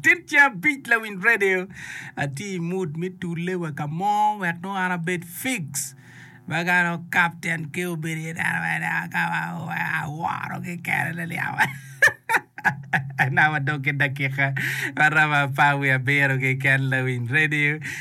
Tit ce abic lawiny radio atye i mood me tule wa ka mo wek nongo an abed fix ma ka nongo captain ki obedo iye dano ma en a kama aworo kekene liliya naka wa dong ki dakika maromo apar wiye abiro keken lawiny radio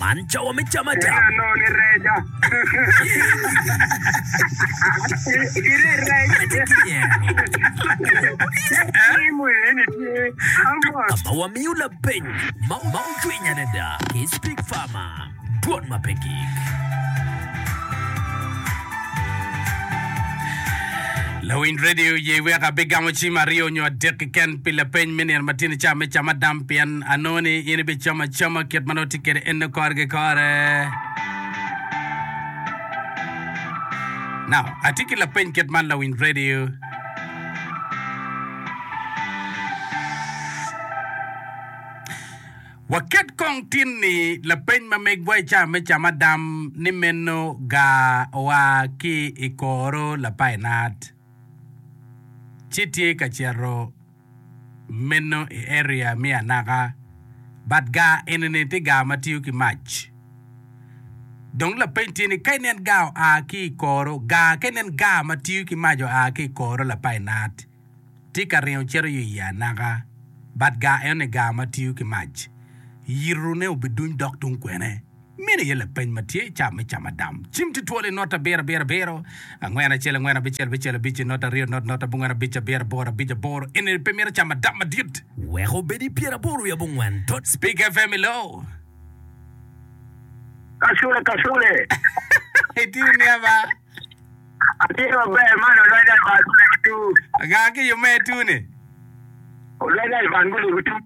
Man cawa me cam acam. Kena nongo ni reca. Gire rec. Kadi kiyero. Tim eni tye amot. Ka ma wamiyo lapeny ma ma ocwiny adada ki Speak Farmer, dwon ma pe gik. Lawiny redio oye wek abigamo cim aryo nyo adek keken pi lapeny me nino ma tini ca me cam adam pien Anongo ni in ibicamo acama kit ma nongo tye kwede eno kore ki kore. Now, atye ki lapeny kit man lawiny redio. Waket kong tin ni lapeny ma megwa i caa me camadam ni meno ga oa ki i koro lapainat ci tye ka cito Meno i area me anaka. But gaa enini tye gaa ma tiyo ki mac. Dong lapeny tye ni ka inen gaa oa ki i koro, gaa ka inen gaa ma tiyo ki mac oa ki i koro lapainat tye ka ringo cito yo i anaka. But gaa enoni gaa ma tiyo ki mac. Yitone obiduny dok tung kwene. Meno aye lapeny ma tye i ca me Camadam. Cim tye twolo i not abiro abiro abiro, angwen acel angwen abicel abicel abic, not aryo not not abongwen abic abiro aboro abic aboro. Enini pe mito Camadam madit. Wek obedi pyeraboro wiye abongwen tot. Speak FM i loo. Kasule kasule. Itye niya ba? Atye maber man olweda i bangule ki tuu. Gaa ki yome tuu ni. Olweda i bangule ki tuu.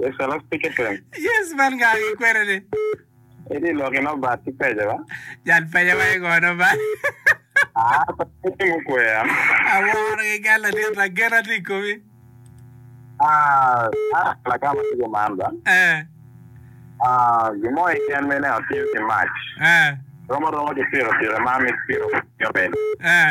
Yes, hello, Pick FM. Yes, man nga gi kwena ni. Edi lok ino bat ki peja ba? Jal peja wa igono ba. Ah, pa ti mo kwea. Aworo gi gal la dit la gena ti komi. Ah, ah, la ka ma tigo man ba. Eh. Ah, gi mo i ken mene a tiyo ki mac. Eh. Romo romo ki piro piro ma mi piro yo mene. Eh.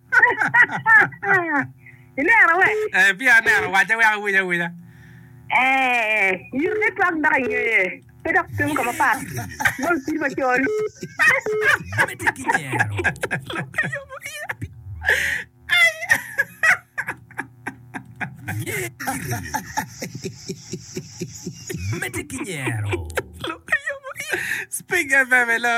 Ineno we? Eh, pia aneno, wacce wek awiny awinya. Eh, yito ne twak dok ingeye. Pe dok timo ka mapat. Bol pir macol. Mete ki nyero. Speak FM, hello.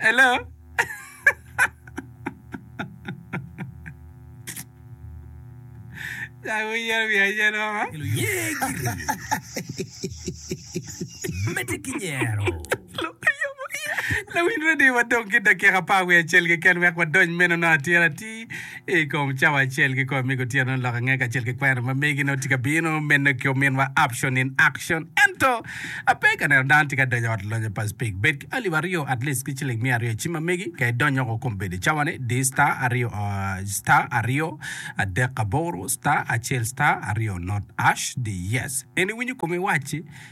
Hello? Dako yero wiye ayer mama. Lawiny radio wadong ki dakika apar wiye acel keken wek wadony meno nongo atir atir I kom cawa acel ki kor mege otyeno ni lok ange kacel ki kwena ma megi nongo tye ka bino mene ki ominwa option in action ento ape ka neno dano tye ka donyo ot lonya pa speak bed ki alip aryo at least ki ciling miya aryo ci ma megi ka idonyo ko kom bedo cawa ni di star aryo star aryo adek aboro star acel star aryo not ash di yes en iwinyo komi wacci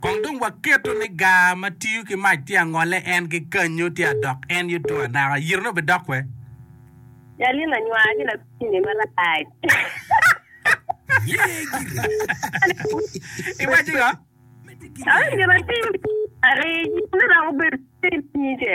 Kong dong waketo ni gar ma tiyo ki mac tye angole en ki kanyu tye adok en yuto anaka, yitone obidok we? Jalina nywaa ki lakwini marac. Iwaco ngo? Aye myero atim. Ari, yitone romo bedo cer nyige.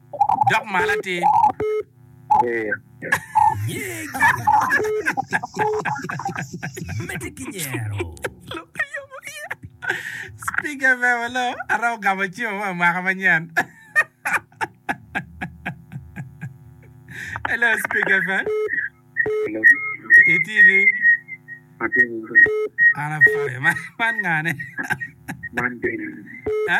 Dok malo atir. Mete ki nyero. Speaker me welo ara ogamo cimo ma mwaka manyen. Hello Speaker me. Iti ni. Ana fire man ngane. Man bene. Ha?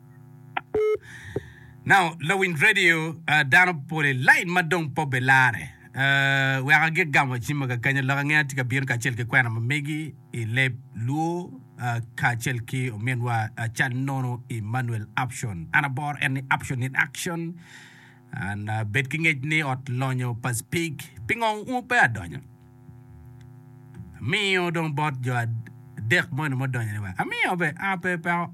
Now, lawiny radio uh, dano pole lain ma dong pe obilare. Uh, weka gi gamo cimma ka kanya lok ange atye ka bino kacel ki kwena ma megi i leb luo uh, kacel ki ominwa uh, cal nono Emmanuel Option. An abor en ni Option in Action. An uh, bed ki ngec ni ot lonyo pa speak. Pingo un pe adonyo? Amiyo dong bot jo adek moni mudonyo ni wa. Amiyo be, ape peko.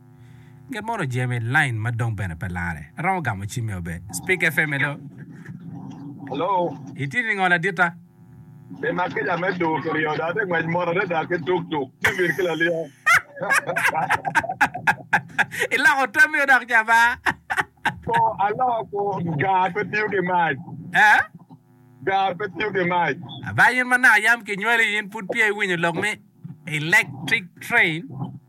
Nget mono Jemi line ma dong bene pe lare. Aromo gamo cim me obe. Speak FM hello. Hello. Itye ningo ladita? Pi ma kica me tur kiryo dong atye ngwec mot adada ki tuk tuk civil ki laliya. Iloko tamio dok jaba. Ko aloko ko gar pe tiyo ki mac. Eh? Gar pe tiyo ki mac. Aba in ma naka yam kinywali in pud pye iwinyo lok me electric train?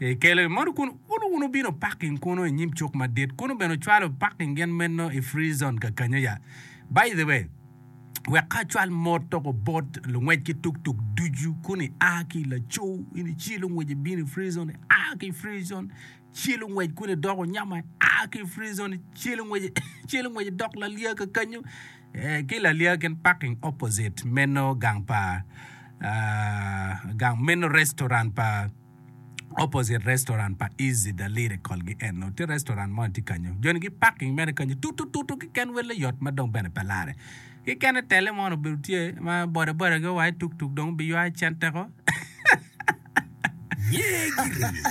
Ekelo i moto kun ulu wunu bino parking kunu i nyim cuk madit kunu bene ocwalo parking gin meno i free zone kakanyo ya. By the way, wek ka acwal moto ko bot lungwec ki tuk tuk ducu kun i a ki i laco in i ci lungwec i bino i free zone i a ki i free zone ci lungwec kun i doko nyama i a ki i free zone ci lungwec ci lungwec i dok lalia kakanyo eh, ki lalia gin parking opposite meno gang pa ah, gang meno restaurant pa opposite restaurant pa Easy the Lyric call gi eno tye restaurant mo tye kanyo joni gi parking mere kanyo tutututu kiken welle yot ma dong bene pe lare ki kene tele mo obedo tye ma boda boda gi owaye tuk tuk dong bi ywayo cente ko. Yee giringo.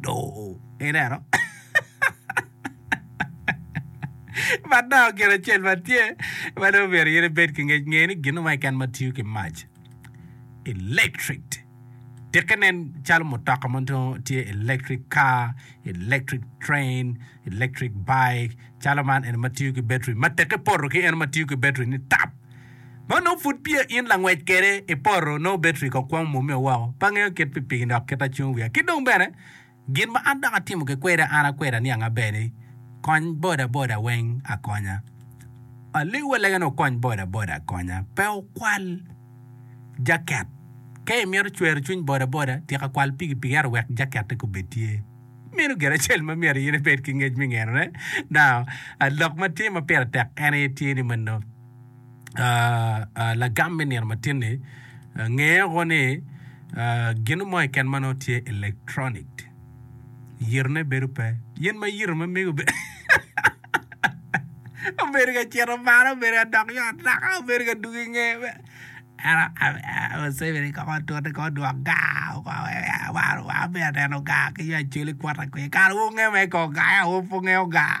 doo ineno ma doo gin acel ma tye ma dong myero in ibed ki ngec nge ni gin mo keken ma tiyo ki mac electric tikke nen calo mutoka ma nongo tye electric car electric train electric bike calo man eni ma tiyo ki beteri ma teke poto ki en ma tiyo ki beteri ni tap Ma onongo pud peya in langwec kwede i poto, nongo obedo rik okwongo mwomeo woko, pe angeyo kit pipigi dok kit acung wiya. Ki dong bene, gin ma an dok atimo kikweda an akweda niang aber ni, Kony bodaboda weng akonya. Aliw walega ni okony bodaboda akonya, pe wukwal jaket. Ka imito cwero cwiny bodaboda, tika kwal pikipiki ento wek jakette kubed tye. Meno gin acel ma myero in ibed ki ngec me ngenone. Now, lok ma tye ma pire tek en aye tye ni mano. lagam me nino matin-ni, ngeo ni gino mo keken ma nongo tye electronic yitone bedo pe. Yen ma yito ma mege obedo ka cito malo, obedo ka dok yo ataka, obedo ka dugo i nge. Museveni kong otute kong odwok gar wan peya waneno gar ki yo acwali kwot aye. Kara wungeyo mere kong gar aye awobi pe wungeyo gar.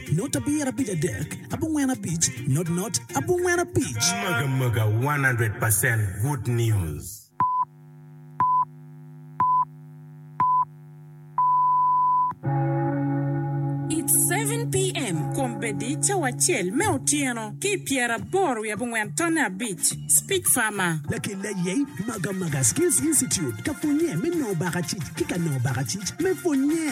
Not abir abic adek abongwen abic not not abongwen abic. Mega mega one hundred percent good news. It's seven PM kombeddi cawa acel me otyeno ki i pyeraboro wiye abongwen tonne abic. Speak farmer. Lakil aye Maga Maga Skills Institute ka pwonye me nongo baka cic ki ka nongo baka cic me pwonye.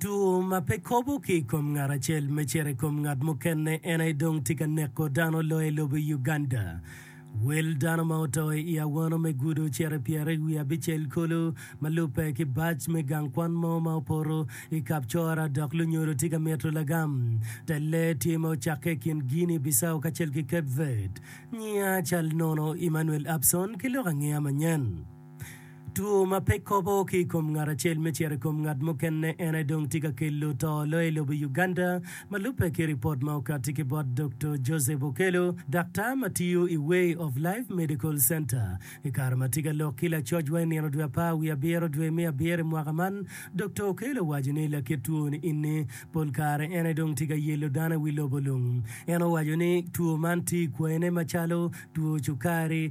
Two ma pe kobo ki i kom ngat acel me cito i kom ngat mukene en aye dong tye ka neko dano loyo i lobo Uganda. Wel dano ma oto i awano me gudo cito i pyere i wi abicel kulu ma lubbe ki bac me gang kwan mo ma opoto i Kapchora dok lunyodo tye ka mito lagam te lee tye ma ocakke i kin Guinea Bissau kacel ki Cape Verde. Nyiya cal nono Emmanuel Abson ki lok angeya manyen. Two ma pe kobo ki i kom ngat acel me cito i kom ngat mukene en aye dong tye ka kelo to loyo i lobo Uganda, ma lubbe ki ripot ma okati ki bot Doktor Joseph Okello, daktar ma tiyo i Way of Life Medical Center. I kare ma tye ka lok ki lacocwa i nino dwe apar wiye abiro dwe me abiro i mwaka man, Doktor Okello owaco ni lakit two ni eni pol kare en aye dong tye ka yelo dano i wi lobo lung. En owaco ni two man tye i kwayine macalo two cukari,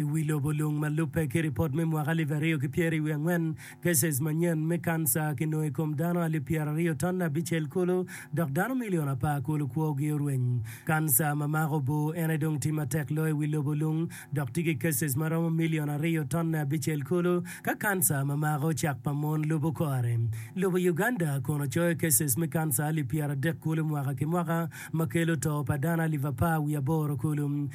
I wi lobo lung ma lubbe ki ripot me mwaka alip aryo ki pyeri wiye angwen, gases manyen me kanca kinongo i kom dano alip pyeraryo ton abicel kulu, dok dano milion apar kulu kwogi orweny. Kanca ma mako oboo en aye dong tye matek loyo i wi lobo lung, dok tye ki gases ma romo milion aryo ton abicel kulu. Ka kanca ma mako cak pa mon lubo kore, lobo Uganda kono coyo gases me kanca alip pyeradek kulu mwaka ki mwaka, ma kelo to pa dano alip apar wiye aboro kulu.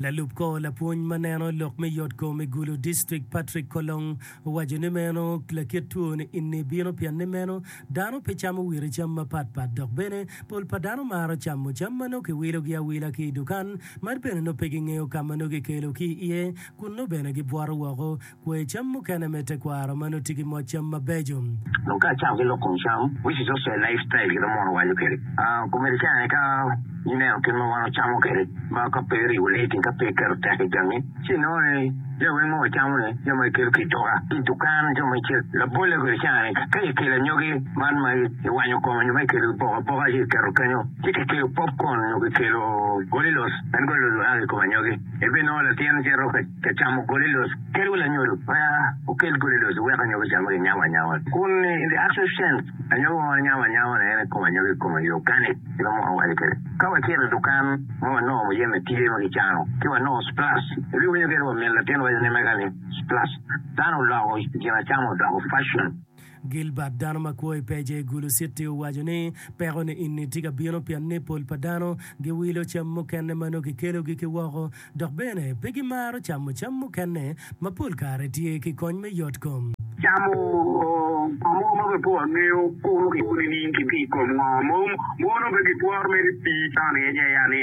Lalub kor lapwony ma neno lok me yot kom i Gulu District, Patrick Kolong, owaco ni meno lakit two ni inni bino pien ni meno dano pe camo wire cam mapat pat dok bene pol pa dano maro camo cam ma nongo kiwilo gi awila ki i dukan ma bene nongo pe gingeyo ka ma nongo gikelo ki iye kun nongo bene gibwoto woko Kwer cam mukene me tekwaro ma nongo tye ki moc cam mabeco. Dong ka acako ki lok kom cam, which is also a lifestyle gin ma mono waco kwede, komedi cen aye ka ineno kit ma wan wacamo kwede ma ka pe iribo lating ka pe iketo tek i jami ci inongo ni jami weng ma wacamo ni jami ma ikelo ki i duka ki i dukan jo ma ice labolle kwede cen aye ni ka ikelo anyogi man ma iwanyo kome nyo ma ikelo iboko aboka ci iketo kenyo ci kikelo popcorn nyo kikelo golilos en golilos oya ki i kom anyogi. Ibinongo latin cito ka camo goli loc. Kel wi lanyodo ma okel goli loc iwek anyogi ocam ma kinyawo anyawa. Kun ni, in the actual sense, anyogi ma wanyawo anyawa ni en i kom anyogi i kome, i organic kit ma mwaka owaco kwede. Ka wacito i dukan ma wanongo muyeme tye ma kicano ci wanongo splash, ibiwinyo kit wa min latin waco ni mega ni, splash. Dano oloko i kin acama odoko fashion. Gilbert dano ma kwo i pec i Gulu Citi owaco ni, Peko-ni eni tye ka bino pien ni pol pa dano giwilo cam mukene ma nongo kikelogi ki woko dok bene pe gimaro camo cam mukene ma pol kare tye ki kony me yotkom. Camo moo mogo ma pe po angeyo kuro ki kuni niing ki pi i kom ngo, mono pe gitworo mere pii cone aye.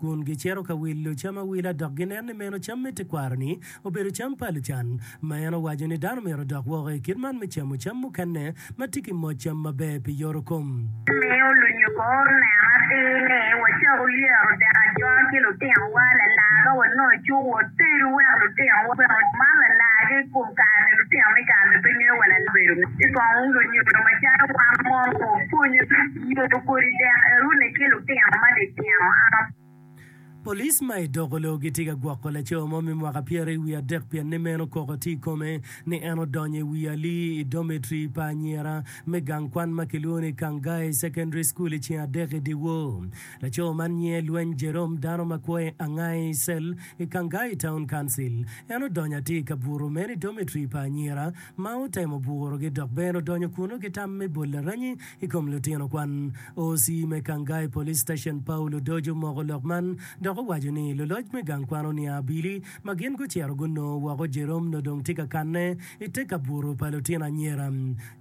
kun gicito ka wilo cam awila dok ginen ni meno cam me tekwaro-ni obedo cam pa lucan, ma en owaco ni dano myero odok woko i kit man me camo cam mukene ma tye ki moc cam maber pi yorokom. Omiyo lunyugo neno atir ni wacak olyero dek ajol ki lutinowa lalar ka wanongo cuk watedo wek lutinowa bene oman lalargi i kom kare-ni. Lutino me kare-ni pe ngeyo wa lalar obedo ngo, ci kong lunyugo macalo wan mono wapwonye. Nyodo kodi dek erune ki lutino matitino aa. Police ma i Dogolo gitye ka gwoko laco mo me mwaka pyere i wiye adek pien ni meno koko tye i kome ni en odonyo i wi ali i dormitory pa anyira me gang kwan ma kilwongo ni Kangai Secondary School i ceng adek i dyewor. Laco man nyinge Lweny Jerome dano ma kwo i Angai Cell i Kangai Town Council. En odonyo atir ka buto meno i dormitory pa anyira ma otemo burogi dok bene odonyo kunnu ki tam me bol laranyi i kom lutino kwan. OC me Kangai Police Station, Paul Odojo omoko lok man dok owaco ni luloc me gang kwan oniang abili ma gin gucito gunongo woko Jerome nongo dong tye ka kanne i te kabuto pa lutino anyira.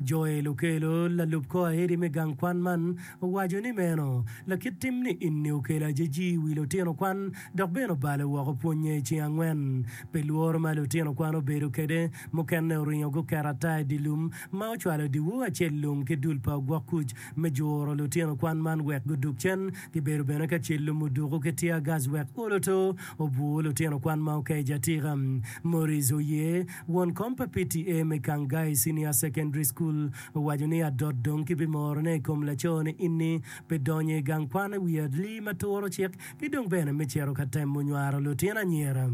Joel Okello, lalub kor aedi me gang kwan man, owaco ni meno lakit tim niini okelo ajeji i wi lutino kwan dok bene obale woko pwonye i ceng angwen. Pi lworo ma lutino kwan obedo kwede, mukene oringo guketo ata i dye lum ma ocwalo dyewor acel lung ki dul pa ogwok kuc me juro lutino kwan man wek gudug cen. Gibedo bene ka cel lum oduku ki tear gas wek olo to obwur lutino kwan ma oke i jatika. Maurice Oye, won kom pa PTA me Kangai Senior Secondary School, owaco ni adot dong kibimorone i kom laco-ni ini pi donyo i gang kwan i wi adli ma turo cik ki dong bene me cito ka temo nywaro lutino anyira.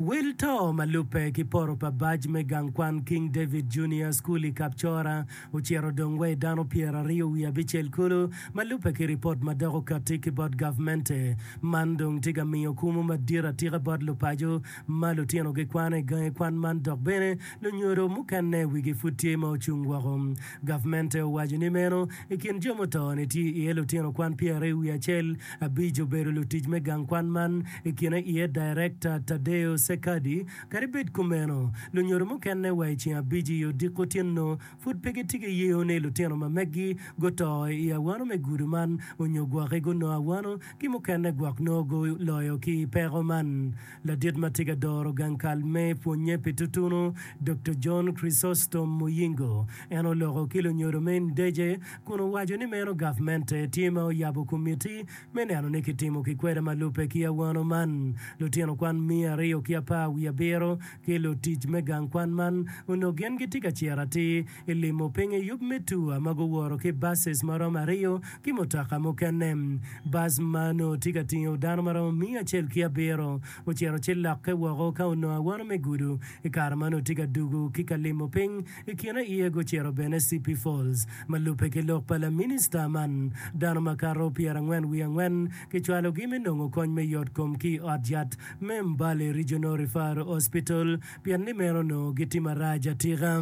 Wil to ma lubbe ki poto pa bac me gang kwan King David Junior School i Kapchora ocito dong wa i dano pyeraryo wiye abicel kulu ma lubbe ki ripot ma dok okatti ki bot gavmente. Man dong tye ka miyo kumo madit atika bot lupaco ma lutinogi kwano i gangi kwan man dok bene lunyodo mukene wigi pud tye ma ocung woko Gavmente owaco ni meno i kin jo muto-ni tye iye lutino kwan pyeraryo wiye acel, abic obedo lutic me gang kwan man i kine iye Daerekta Tadeo Sekadi. Kadi bed kumeno, lunyodo mukene wa i ceng abic i odiko otyeno pud pe gitye ki yeyo ni lutino ma megi guto i awano me gudo man onyo gwoki gunongo awano ki mukene gwok nongo guloyo ki peko man. Ladit ma tye ka doro gang kal me pwonnye pi tutunu, Doktor John Chrysostom Muyingo, en oloko ki lunyodo me Ndece kun owaco ni meno gavmente tye ma oyabo komitti me neno ni kitimo ki kwede ma lubbe ki awano man. Lutino kwan miya aryo ki apar wiye abiro ki lutic me gang kwan man onongo gin gitye ka ciro atir Ilimo pinye yub me tua ma guworo ki buses ma romo aryo ki mutoka mukene. Bus ma onongo tye ka tingo dano ma romo miya acel ki abiro ocito ci lokke woko ka onongo awono me gudo. I kare ma onongo tye ka dugo ki ka limo piny, i kine aye gucito bene Sipi Falls. Ma lubbe ki lok pa laminista man, dano makato pyerangwen wiye angwen kicwalogi me nongo kony me yotkom ki i ot yat me Mbale Regional Referral Hospital pien ni meno onongo gitye marac atika.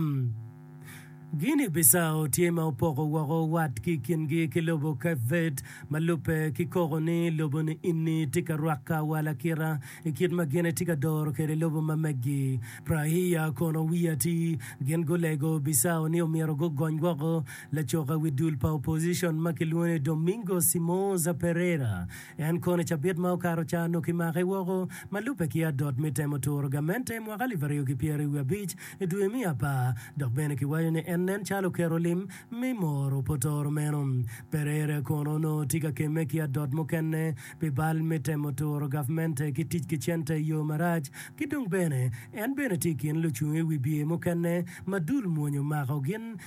Guinea Bissau tye ma opoko woko watgi i kingi ki lobo Cape Verde, ma lubbe ki koko ni lobo ni ini tye ka rwaka wa lakita i kit ma gin etye ka doro kwede lobo ma meggi. Praia kono wiye atir, gin gulego Bissau ni omyero gugony woko lacoka wi dul pa opposition ma kilwongo ni Domingos Simoza Pereira En kono i cabit ma okato ca onongo kimake woko ma lubbe ki adot me temo turo gamente i mwaka alip aryo ki pyeri wiye abic i dwe me apar dok bene kiwaco ni en nen calo oketo lim me moro pa otoro meno. Pereira kono onongo tye ka kemme ki adot mukene pi bal me temo turo gavmente ki tic ki cente i yo marac ki dong bene en bene tye i kin lucung i wi bye mukene ma dul mwonyo mako gin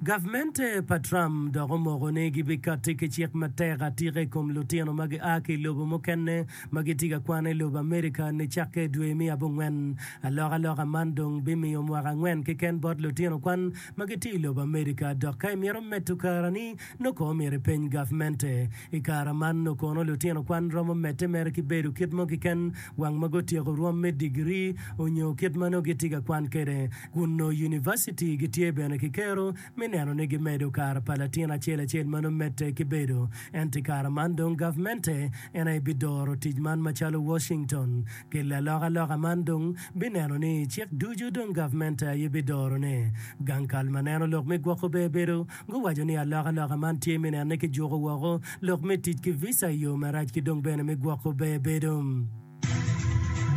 Gavmente pa Trump dok omoko ni gibikatti ki cik matek atika i kom lutino ma gia ki i lobo mukene ma gitye ka kwane i lobo Amerika nicakke i dwe me abongwen. Alokaloka man dong bimiyo mwaka angwen keken bot lutino kwan ma gitye i lobo Amerika dok ka imito medo karani nongo kono myero ipeny gavmente. I kare man nongo kono lutino kwan romo medde mere ki bedo kit mo keken wang ma gutyeko rwom me digiri onyo kit ma nongo gitye ka kwan kwede. kun nongo univaciti gitye bene ki kero me neno ni gimedo kare pa latin acel acel ma nongo medde ki bedo. Ento i kare man dong gavmente en aye bidoro tic man macalo Washington. Kel alokaloka man dong bineno ni cik ducu dong gavmente aye bidorone. Gang kal ma neno lok me gwoko bebedo guwaco ni alokaloka man tye me nene ki juko woko lok me tic ki visa i yo marac ki dong bene me gwoko bebedo.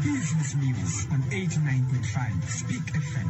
Business News on 89.5 Spik FM.